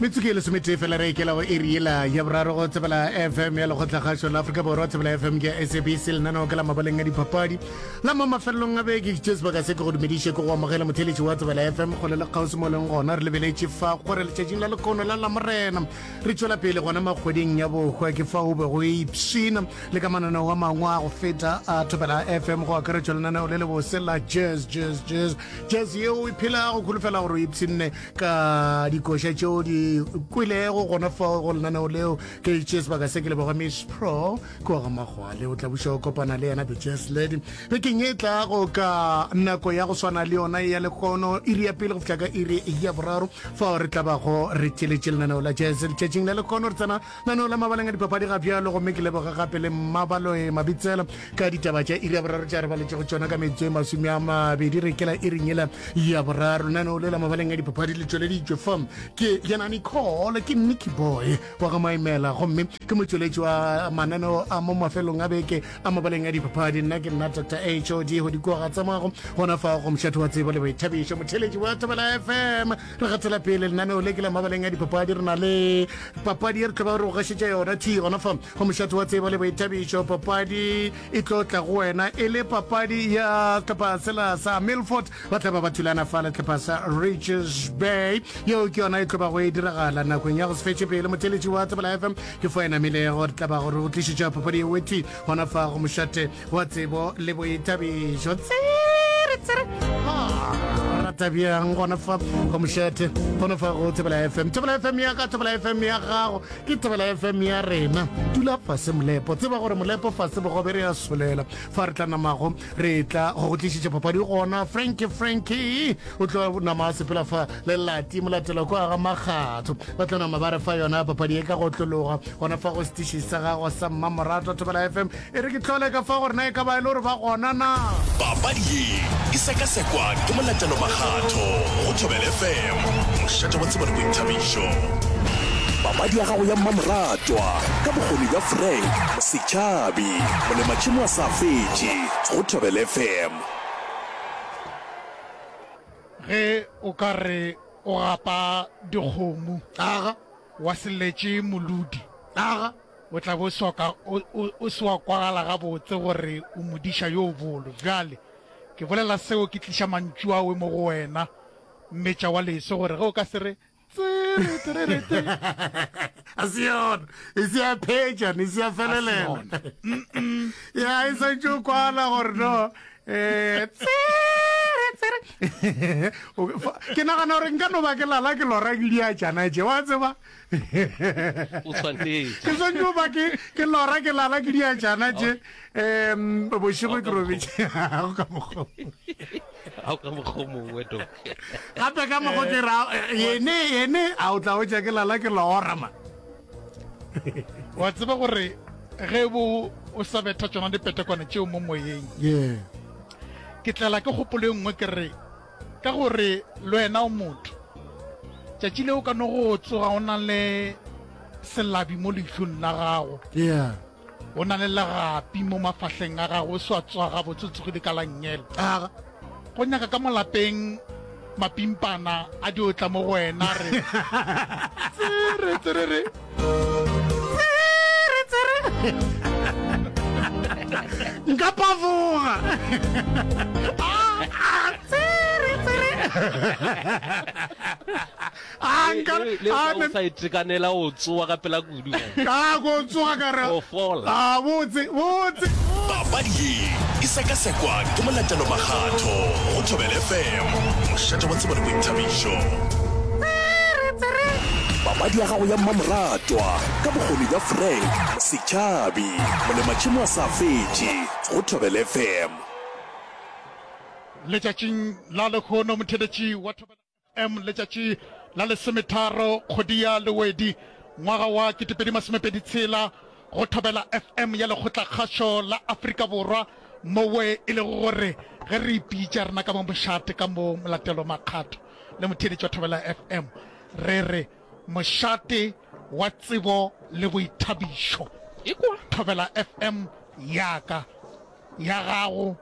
metsotso e lesometee fela re ekela go eri ela ya boraro go tsebela fm ya lekgotlakgašo la aforika borwa tsebela fm ke sabc lenaneo ke la mabaleng a dipapadi la mo mafelelong a beke ke sebaka se ke go dumediše ke go amogela motheletši wa tsebela fm kgole le kgaosi mo leng gona re lebeletše fa gore letšatšing la lekono la lamorena re tšwela pele gona makgweding ya bohwa ke fa o be go ipshina le ka mananeo a mangwe a go feta a thobela fm go akaretšwa lenaneo le le bose la jazz jazz jazz Jazz ye o e phelago, kholofela gore o ipshinne ka dikoša tše o di kwelego gona fao go lenaneo leo. Ke itše sebaka se ke leboga Miss Pro kua ga Magwale. O tla buša go kopana le yena The Jazz Lady bekeng e tlago ka nako ya go swana le yona ya lehono, iri ya pele go fihla ka iri ya boraro, fao re tla bago re tšeletše lenaneo la Jazz letšatšing la lehono. Re tsena Lenaneo la mabaleng a dipapadi ga bjalo gomme ke leboge gape le Mmabaloe Mabitsela ka ditaba tša iri ya boraro tša re baletšego tšona ka metsotso e masome a mabedi re kela e renyela ya boraro. Lenaneo le la mabaleng a dipapadi le tšweleditšwe fa ke yena Nicole ke Nicky Boy wa ga Maimela gomme ke motšweletši wa mananeo a mo mafelong a beke a mabaleng a dipapadi. Nna ke nna Dr HOD Godikoa ga tsamago gona fa go mošate wa tsebo le boithabišo motheletši wa Thobela FM. re gatsela pele lenaneo le ke la mabaleng a dipapadi re na le papadi e re tlo ba re go gašetša yona t gona fa go mošate wa tsebo le boithabišo papadi e tlo tla go wena e le papadi ya setlhopha sela sa milford ba tla ba ba thulana fa le setlhopha sa riches bay yeo ke yona e tlo ba go e diragala nakong ya go se fetše pele motheletši wa tsebela fm ke fo enamilego re tla ba gore o tlišetša papadi eo e t gona fa go mošate wa tsebo le boitabišo tsere rata bjang gona fa go mošethe gona fa go thebela fm thebela fm ya ka thebela fm ya gago ke thebela fm ya rena dula fase molepo tseba gore molepo fase bogobe re ya solela fa re tla namago re tla go go tlišitše papadi gona franki franki o tlo nama sepela fa le lati molatelo ko aga makgatho ba tlo nama ba re fa yona papadi e ka go tlologa gona fa go setiši sa gago sa mmamorato thebela fm E re ke tlole ka fa gore na e ka ba e le gore ba gona na. Papadi ye e sekasekwa ke molatelo makgatho go Thobel FM, mošate wa tsebo le boithabišo. Papadi ya gago ya mmamoratwa ka bokgoni bja Frank Setšhabi, molematšhemo wa sa fetše go Thobel FM. Ge o ka re o gapa dikgomo, wa se letše molodi. O tla be o se wa kwagala gabotse gore o modiša yo bolo. Bjale ke bolela seo ke tliša mantšu a we mo go wena, mmetša wa leso, gore ge o ka se re, Tsiritiririti! A se yona, e se ya phetšana, e se ya felelela. Ya, e santše o kwana gore no, eh, tsere, tsere. Ke nagana gore nka no ba ke lala ke lora ke diatšana tše, wa tseba. o tshwanetše ke swantse o ba ke ke lora ke lala ke diajana tše um bošego ke robetše gago ka mokgo ao ka mokgo mongwe to gape ka mokgo ke ra yene yene a o tla o tša ke lala ke lora ma wa tseba gore ge bo o sa betha tsona dipetekwane tšeo mo moyeng ke tlala ke kgopolo e nngwe ke re Ka gore le wena o motho. Tšatši le o ka no go tsoga o na le selabi mo leihlong la gago. Yeah. O na le legapi mo mafahleng a gago, o swa tswaga botsotsogile ka la ngela. A go nyaka ka molapeng mapimpana a diotla mo go wena re. Tsere tsere re. nka pavoga sa itekanela o tsoa ka pela kudu ka go tsoga ka re a botse botse papadi ye e sekasekwa ke molatelo makgatho go thobele fm mošate wa tsebo le boithabišo Papadi ya gago ya mmamoratwa ka bokgoni bja Frank Setšhabi, molematšhemo a sa fetše go Thobela FM. Letšatšing la lehono motheeletši wa Thobela FM letšatši la lesometharo kgwedi ya Lewedi ngwaga wa ketepedi masomepedi tshela go Thobela FM ya Lekgotlakgašo la Afrika Borwa mowe e lego gore ge re ipitša re naka mo mošate ka mo molatelo makgatho le motheeletši wa Thobela FM, re re mošate wa tsebo le boithabišo. Ekwa Thobela FM ya ka, ya gago,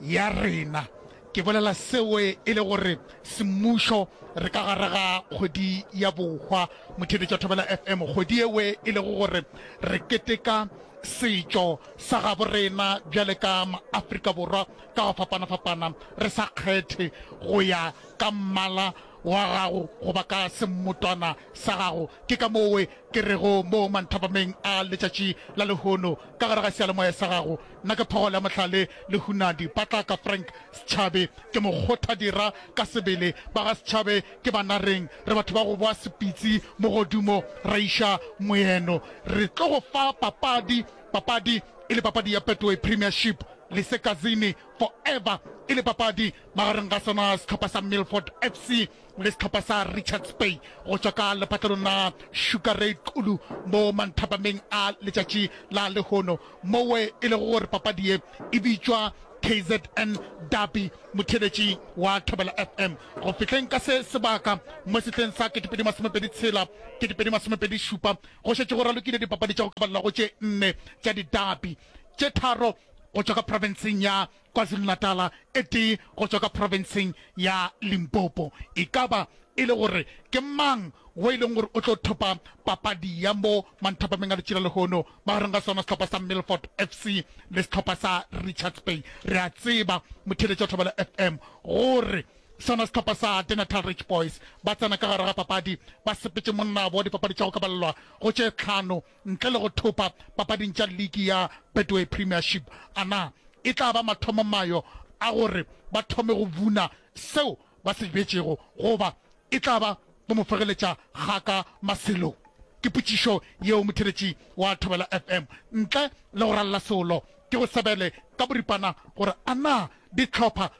ya rena. Ke bolela seo e le gore semmušo re ka gare ga kgwedi ya bohwa motheeletši wa Thobela FM, kgwedi ewe e lego gore re keteka setšo sa gabo rena bjale ka maafrika borwa ka go fapana-fapana, re sa kgethe go ya ka mmala wa gago goba ka semmotwana sa gago. Ke ka mowe ke rego mo manthapameng a letšatši la lehono, ka gare ga seyalemoya sa gago, nna ke phogolo ya mohlale le hunadi. Patlaka Frank Setšhabe ke mokgothadira ka sebele, ba ga Setšhabe ke banareng, re batho ba go boa sepitsi mogodumo, ra iša moeno. Re tlo go fa papadi Papadi e le papadi ya Betway Premiership le Sekazini Forever e le papadi magareng ga sona sehlopha sa Milford FC le sehlopha sa Richards Bay go tšwa ka lephatlelong la Sugar Ray Xulu mo manthapameng a letšatši la lehono mowe e lego gore papadi ye e bitšwa KZN Derby motheeletši wa Thobela FM go fihleng ka se sebaka mo sehleng sa 2026-2027 Go šetše go ralokile dipapadi tša go kabalela go tše nne tša didapi, tše tharo go tšwa ka profenseng ya KwaZulu-Natala e tee go tšwa ka profenseng ya Limpopo. E ka ba e le gore ke mang wo e leng gore o tlo thopa papadi ya mo manthapameng a letšila lehono magareng ga sona sehlopha sa Milford FC le sehlopha sa Richards Bay? Re a tseba motheeletša wa Thobela FM gore Sona sehlopha sa The Natal Rich Boys ba tsena ka gare ga papadi ba sepetše monnabo wa dipapadi tša go kabalelwa go tše tlhano ntle le go thopa papading tša liki ya Betway Premiership. A na e tla ba mathomo mayo a gore ba thome go buna seo ba se jbetšego goba e tla ba go mo fegeletša gaka maselong? Ke potšišo yeo motheeletši wa Thobela FM ntle le go ralla solo ke go sebele ka boripana gore a na dihlopha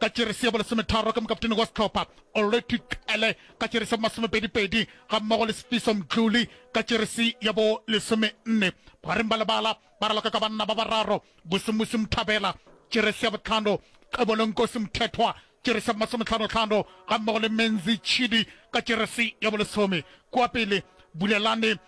Ka tše re se ya bolesometharo ke mokaptene wa sehlopha Olwethu Cele, ka tše re se ya bomasomepedipedi ga mmogo le Sifiso Mdluli ka tše re se ya bo lesomenne. Bogareng ba lebala ba raloka ka banna ba bararo, Busumusi Mthabela, tše re se ya bohlano, Xebolo Nkosi Mthethwa, tše re se ya bomasomehlanohlano ga mmogo le Menzi Tshidi ka tše re se ya bolesome. Kua pele, Bulelani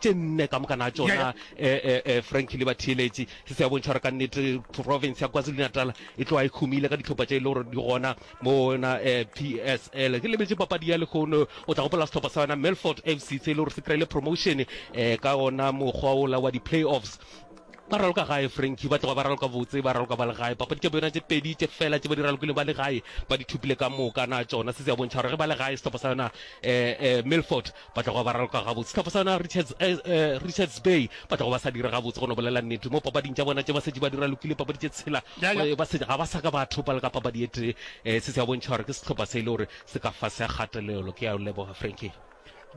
tše nne ka moka na tšona um frank le batheeletši se se ya bontšha gore ka nnete province ya kwazulu-natal e tloga e humile ka ditlhopha tše e le gore di gona mona um p s l ke lebetse papadi ya lekgono o tla gopola setlhopha sa yona melfort f c se e le gore se kry-ile promotion um ka ona mokgwa ola wa di-play offs ba raloka gae franki ba tloga ba raloka botse ba raloka ba le gae papadi tša bona tše pedi tše fela tše ba di ralokile ba le gae ba di thupile ka moka na tšona se se ya bontšha gore ge ba le gae setlhopha sa yona um milford Ba tloga ba raloka gabotse. Sehlopha sa yona Richards, eh, eh, Richards Bay ba tloga ba sa dira gabotse go no bolela nnete. Mo papading tša bona tše ba setše ba dira lokile papadi tše tshela. Ya, ya. Eh, Ba se, ga ba sa ka ba thopa le ka papadi e tee. Eh, se se a bontšha gore ke sehlopha se e le gore se ka fase ya kgatelelo. Ke a o leboga Frankie.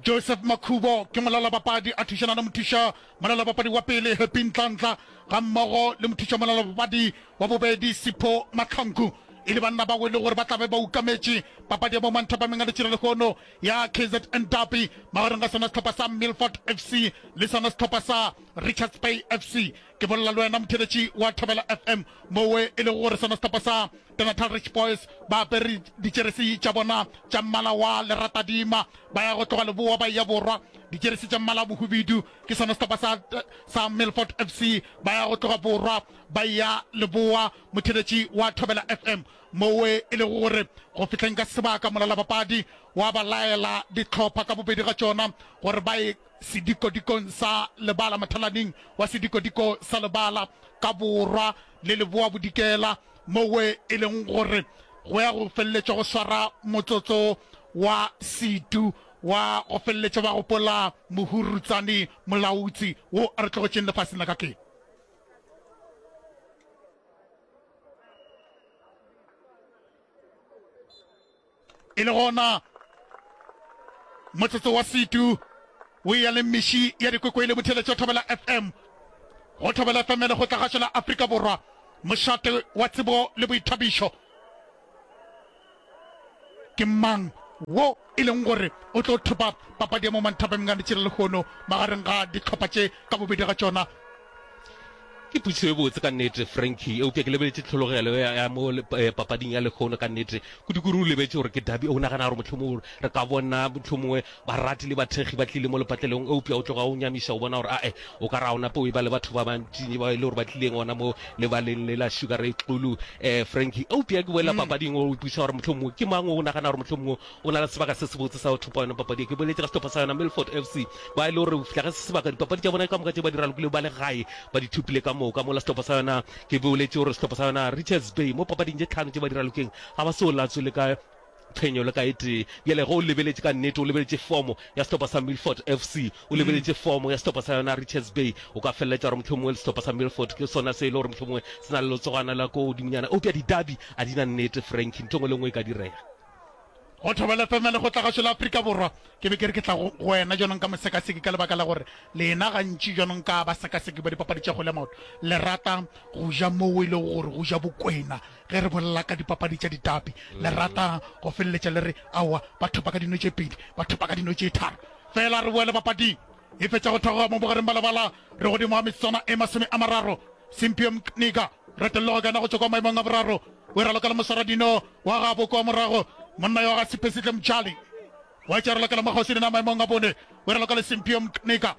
Joseph Makhubo ke molalabapadi a thušana le mothuša molalabapadi wa pele Happy Ntlantla ga mmogo le mothuša molalabapadi wa bobedi Sipho Mahlanku e le banna bao e le gore ba tla be ba ukametše papadi ya mo Manthapameng a Letšira lehono ya kzn Derby magareng ga sona sehlopha sa Milford FC le sona sehlopha sa Richards Bay FC. Ke bolela le wena motheeletši wa Thobela FM mowe e lego gore sona sehlopha sa The Natal Rich Boys ba apere ditšeresi tša bona tša mmala wa leratadima ba ya go tloga leboa ba eya borwa, ditšeresi tša mmala wa bohubidu ke sona sehlopha sa sa Milford FC ba ya go tloga borwa ba eya leboa motheeletši wa Thobela FM. mowe e lego gore go fihleng ka sebaka molalabapadi wa ba laela dihlopha ka bobedi ga tšona gore ba ye sedikodikong sa lebala mothalaning wa sedikodiko sa lebala ka borwa le leboabodikela mowe e leng gore go ya go feleletša go swara motsotso wa setu wa go feleletša ba gopola mohurutsane molautsi wo a re tlogetšeng lefaseng la ka ke e le gona motsotso wa setu o eya le mmeši ya dikwekwele motheletšo thobela fm go thobela fm le go tlagašo la afrika borwa mošate wa tsebo le boithabišo Ke mang wo e leng gore o tlo thopa papadi ya mo Manthapeng ga letše la lehono magareng ga dihlopha tše ka bobedi ga tšona? Ke putsiso e botse ka nnete Frankie, eupša ke lebeletše tlhologelo ya, ya mo le, eh, papading ya lehono ka nnete. Kudikudu o lebetše gore ke derby, o nagana gore mohlomongwe re ka bona mohlomongwe Barati le bathekgi ba tlile mo lepatlelong, eupša o tloga o nyamiša go bona gore a-e o ka re a o nape o eba le batho ba bantšinyne bao e le gore ba tlileng gona mo lebaleng le la Sugar Ray Xulu. Um, Frankie, eupša ke boela papading o ipuša gore mohlomongwe ke mang o nagana gore mohlomongwe o na le sebaka se sebotse sa go thopa yona papadi ye. Ke boletše ka sehlopha sa yona Milford FC, bao e le gore go fihla ga se sebaka dipapadi tša bona ka moka tše ba di ralokilego ba le gae ba di thopile ka moka. Mola sehlopha sa yona, ke boletše gore sehlopha sa yona Richards Bay mo papading tše tlhano tše ba di ralokeng ga ba so latswe le ka Phenyo le ka e tee. Bjale ge o lebeletše ka nnete, o lebeletše fomo ya sehlopha sa Milford FC, o lebeletše fomo ya sehlopha sa yona Richards Bay, o ka feleletša gore mohlomongwe le sehlopha sa Milford ke sona se e le gore mohlomongwe se na le letsogwana la kua godimonyana. Eupša di-derby a di na nnete, Frankie. Ntho e nngwe le e nngwe e ka direga. Go Thobela FM ya Lekgotlagašo la Afrika Borwa, ke be ke re ke tla go wena bjanong ka mosekaseki ka lebaka la gore lena gantši bjanong ka basekaseki ba dipapadi tša kgwele ya maoto le rata go ja moo e lego gore go ja bokwena Ge re bolela ka dipapadi tša ditapi, le rata go feleletša le re, Aowa, ba thopa ka dino tše pedi, ba thopa ka dino tše tharo. Feela re boele papading e fetša go theoga mo bogareng ba lebala, re godimo ga metsotswana e masome a mararo. Simpio Mkniga, retello go kena go tšwa kwa maemong a boraro, o e ralokela moswaradino wa gabo kwa morago, monna yo ga Siphesihle Mtshali wa etša ralokela Makgosi dina maemong a bone, o e ralokele Simpio Mkniga.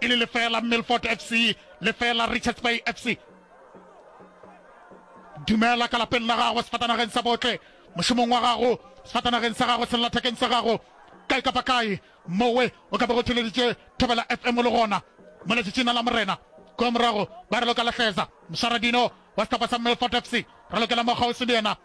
e le lefela milford fc lefela richards bay fc dumela ka lapeng la gago sefatanageng sa botle mošomong wa gago sefatanageng sa gago sellathekeng sa gago kae kapa kae mowe o ka be go theleditše thobela fm le gona mo letšatšina la morena kua morago ba re loka lahleza mošaradino wa sehlopha sa milford fc re lokela mokgaosi le yena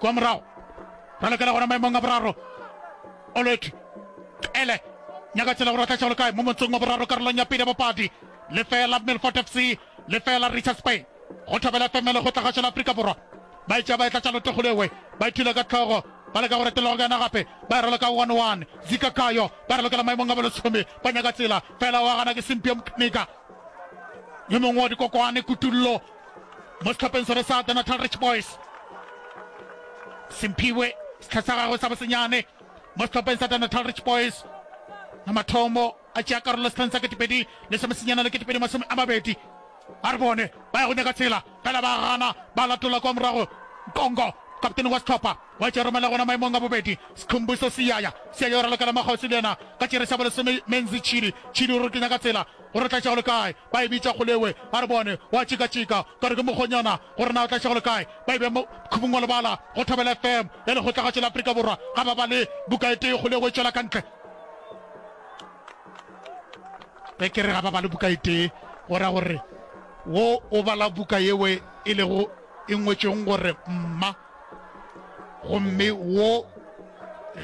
Kwa morago, ra lokela gona maemong a boraro. Olwethu, Qele, Nyakatsela go ra tlatša go le kae mo motsong wa boraro karolong ya pele ya bapadi? Lefeela Milford FC, lefeela Richards Bay. Go Thobela FM e lekgotla kgašo la Afrika Borwa. Ba e tšea ba e tlatša lotego le we, ba e thula ka tlhogo, ba leka go retelelwa go ka yona gape, ba e raloka one one. Zika Kayo, ba re lokela maemong a bolesome kwa Nyakatsela, fela wa gana ke Simpio Mkniga, yo mongwe wa dikokwane. Kutullo. mo sehlopeng sone sa The Natal Rich Boys. Simphiwe, setlha sa gagwe sa bosenyane mo sehlopeng sa The Natal Rich Boys. Na mathomo a tšea karolo setlheng sa ketepedi le semesenyana le ketepedi masome a mabedi. A re bone ba ya go nyaka tshela, fela ba gana ba latola kwa morago. Nkongo, kaptene wa sehlopha, Wa tšoromela gona maemong a bobedi. Skhumbuso se yaya, se ya yo raloka la Makgosi le yena ka tšere sa bolesome. Menzi, Tšhidi, Tšhidi o re kenya ka tsela, o re tlatša go le kae? Ba e bitša Kgolewe. A re bone, wa tšika-tšika, ka re ke mokgonyana, go re na o tlatša go le kae? Ba e bea mo khubung wa lebala go Thobela FM ya Lekgotlagatšo la Afrika Borwa. Ga ba bale buka e tee, Kgolewe e tšwela ka ntle. Ge ke re ga ba bale buka e tee, go ra gore wo o bala buka yeo e lego. e ngwetšwego gore Mma, gomme wo